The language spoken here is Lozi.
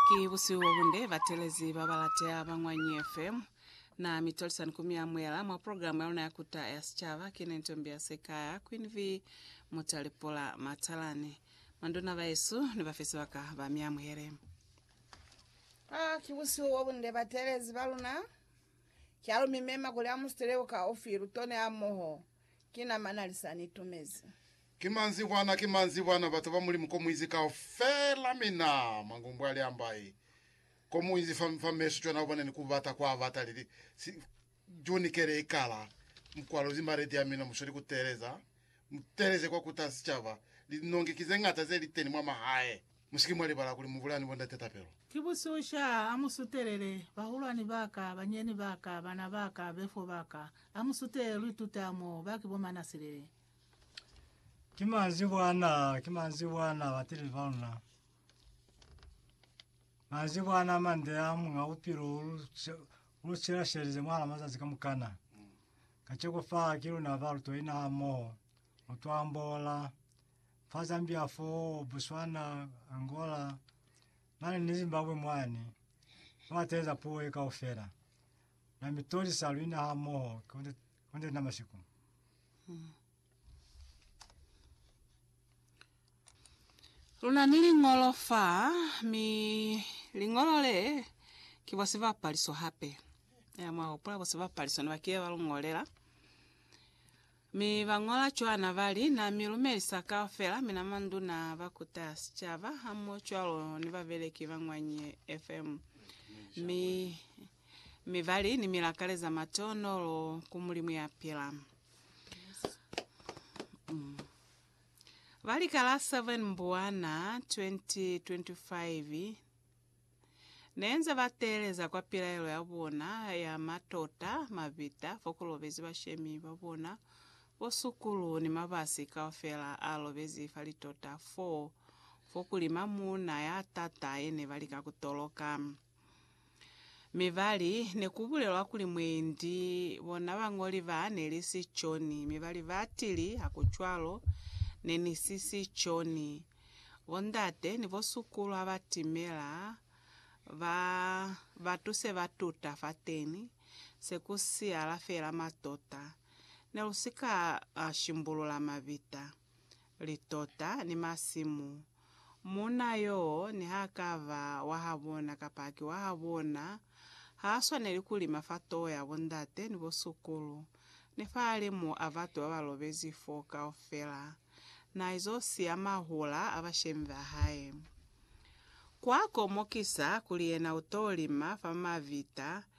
Ki busihu bo bunde, batelezi ba balateha ba Ñwanyi FM na mi tolisani ku mi amuhela mwa program ya luna ya Kuta ya Sicaba. Ki ne Ntombi ya Sekaya, Queen V Mutalipula Matalani. Manduna bahesu ni bafe sibaka ba mi amuhele. Ah, ki busihu bo bunde, batelezi ba luna. Ki alu mi mema kuli amu sitele uka ufi, lu tone hamoho. Ki na mana lisa ni tumezi. Ki manzibwana, ki manzibwana, batu ba Mulimu ko muinzi kaufela, mina mangumbwa li ambai ko muinzi fa, fa meso cwana uboneni ku bata kwa bata lili si, June kele ikala mukwalo zi maledi ya mina musweli ku teeleza, mu teeleze kwa kuta sicaba, li nongi ki ze ngata ze li teni mwa mahae, musiki mwa libala kuli mu bulani bo ndate tapelo. Ki bususha, a mu sutelele, bahulwani baka, banyeni baka, bana baka, befo baka, a mu sutelele lu ituta mo, ba ki bo manasilele. Ki manzibwana, ki manzibwana batili baluna. Manzibwana mande ya munga upilo ulusila shelize mwana mazazi kamukana. Kacheko fa kilo na balu to ina mo. Utwambola. Fa Zambia fo, Botswana, Angola. Mane ni Zimbabwe mwani. Mwateza puwe ka ufela. Na mitoli sa luina ha mo. Kone Konde na masiku. Luna ni liñolo fa, mi liñolo le ki bo sibapaliso hape. Ya mwa hopola bo sibapaliso ne ba kile ba lu ñolela. Mi ba ñola cwana ba li, Na mi lumelisa kaufela, mina manduna, ba kuta sicaba, hamoho cwalo ni babeleki ba ñwa Nye FM. Mi mi ba li ni milakale za matonolo ku Mulimu ya pila. Mm. Ba li ka la 7 Mbuwana 2025 neenze ba teeleza kwa pilaelo ya bona ya matota mabita fo ku lobezi bashemi ba bona bo sukulu ni mabasi kaufela a lobezi fa litota foo fo kuli mamuuna ya tata yene ba lika ku toloka. Mi bali, Nekubulelwa kuli mwendi bona bañoli ba neli si Joni. Mi bali, Batili, hakucwalo, nenisi si Joni. Bondate ni bosukulu habatimela, ba, batu se ba tuta fateni, se ku siyala fela matota. Nelusika shimbulula mabita. litota, ni masimu. Muuna yoo nihakaba wahabona kapa ki wahabona, haaswaneli kulima fa toho ya bondate ni bosukulu, ni fahalimu a batu babalobezi fo kaufela. Naizo siya mahula a bashemi bahae. Kuakomokisa kuli yena utolima fa mavita,